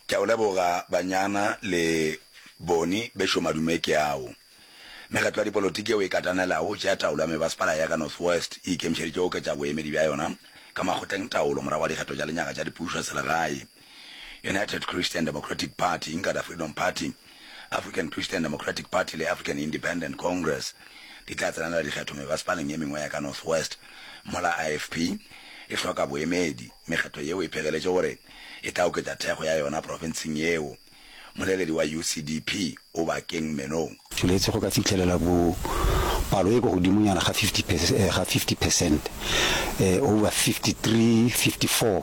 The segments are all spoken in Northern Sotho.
Ke a o leboga banyana le boni bešo madume ke ao. Mekgatlo ya dipolotiki yeo e katanelago go tšea taolo ya mebasepala ya ka North West e ikemišeditše go oketša boemedi bja yona ka makgotleng taolo morago ga dikgetho tša lenyaga tša dipušo selegae. United Christian Democratic Party, Inkatha Freedom Party, African Christian Democratic Party le African Independent Congress di tla tsenela dikgetho mebasepaleng ye mengwe ya ka North West mola IFP e hloka boemedi. Mekgetho yeo e phegeletše gore e tla oketša thekgo ya yona profenseng yeo. Moleledi wa UCDP o Bakeng Menong. Tšweletše go ka fihlelela bo palo e kwa godimonyana ga 50 percent, over 53, 54.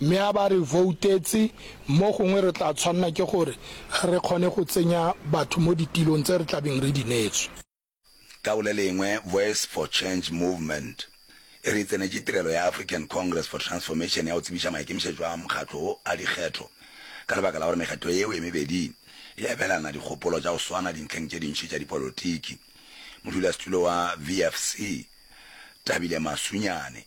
Mme a ba re voutetse, mo gongwe re tla tshwanela ke gore re kgone go tsenya batho mo ditilong tse re tlabeng re di neetswe. Ka go le lengwe, Voice for Change Movement e re e tsenetše tirelo ya African Congress for Transformation ya go tsebiša maikemišetšo a mokgatlo wo a dikgetho ka lebaka la gore mekgatlo yeo e mebedi e abelana dikgopolo tša go swana dintlheng tše dintši tša dipolotiki. Modulasetulo wa VFC, Thabile Masunyane.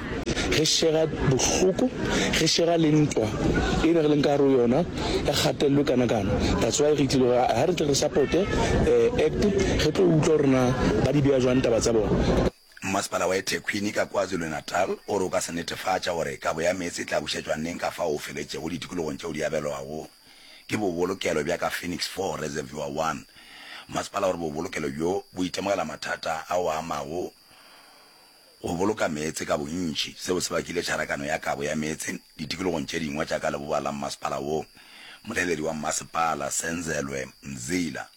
Re šega bohloko, re šega le ntwa e ne re leng ka gare yona ya kgatello kana kana. That's why re itlile gore ha re tle re supporte eh, act re tlo utlwa gore na ba di beya jwang taba tsa bona. Mmasepala wa eThekwini ka KwaZulu-Natal o re o ka se netefatša gore kabo ya meetse e tla bušetšwa neng ka fao o feletšego ditikologong tšeo di abelwago ke bobolokelo bja ka Phoenix Four Reservoir One. Mmasepala o re bobolokelo bjo bo itemogela mathata a o amago go boloka meetse ka bontši, seo se bakile tšharakano ya kabo ya meetse ditikologong tše dingwe tša ka leboa la mmasepala wo. Molaeledi wa mmasepala, Senzelwe Mzila,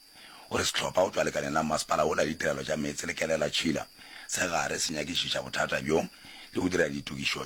o re sehlopha go tšwa lekaleng la mmasepala wo la ditirelo tša meetse le Kelela Tšhila se gare se nyakišiša bothata bjo le go dira ditokišo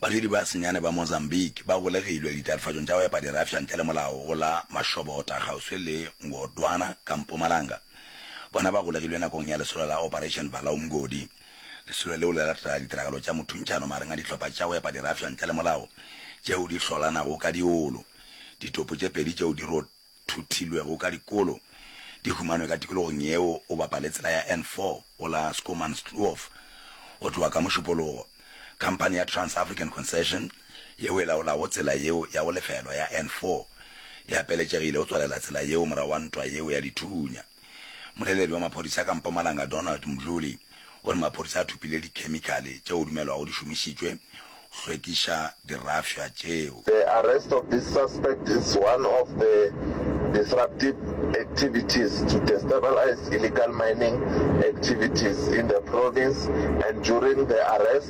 Badudi ba senyane ba Mozambique ba golegilwe ditatofatšong tša go epa dirafša ntle le molao go la Mashobota kgauswi le Ngodwana ka mpumalanga. Bona ba golegilwe nakong ya lesolo la Operation Vala Umgodi. Lesolo leo le latela ditiragalo tša mothuntšhano magareng a dihlopha tša go epa dirafša ntle le molao tšeo di hlolanago ka diolo. Ditopo tše pedi tšeo di thothilwego ka dikolo di humanwe ka tikologong yeo o bapale tsela ya N4 go la Schoemanskloof go tloga ka Mošupologo. Khamphani ya Trans-African Concession yeo e laolago tsela yeo ya go lefelwa ya N4 e apeletšegile go tswalela tsela yeo morago ga ntwa yeo ya dithunya. Moleledi wa maphodisa ka Mpumalanga Donald Mdluli o re maphodisa a thopile dikhemikhale tšeo go dumelwago di šomišitšwe go hlwekiša dirafša tšeo. The arrest of this suspect is one of the disruptive activities to destabilize illegal mining activities in the province and during the arrest,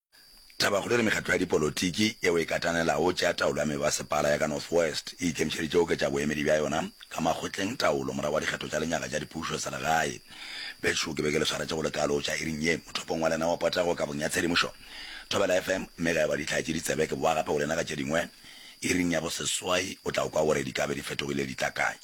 Tabakgolo e re mekgatlo ya dipolotiki yeo e katanelago tša taolo ya mebasepala ya ka North West e ikemišeditše go oketša boemedi bja yona ka makgotleng taolo morago ga dikgetho tša lenyaga tša dipušo selegae. Bešo ke be ke le swaretše go lekalo tša iring ye mothopong wa lena wa potego kabong ya tshedimošo Thobela FM mme ge e ba di tlhaetše ditsebe ke bowa gape go lena ka tše dingwe iring ya boseswai o tla kwa gore di ka be di fetogile di tla kae.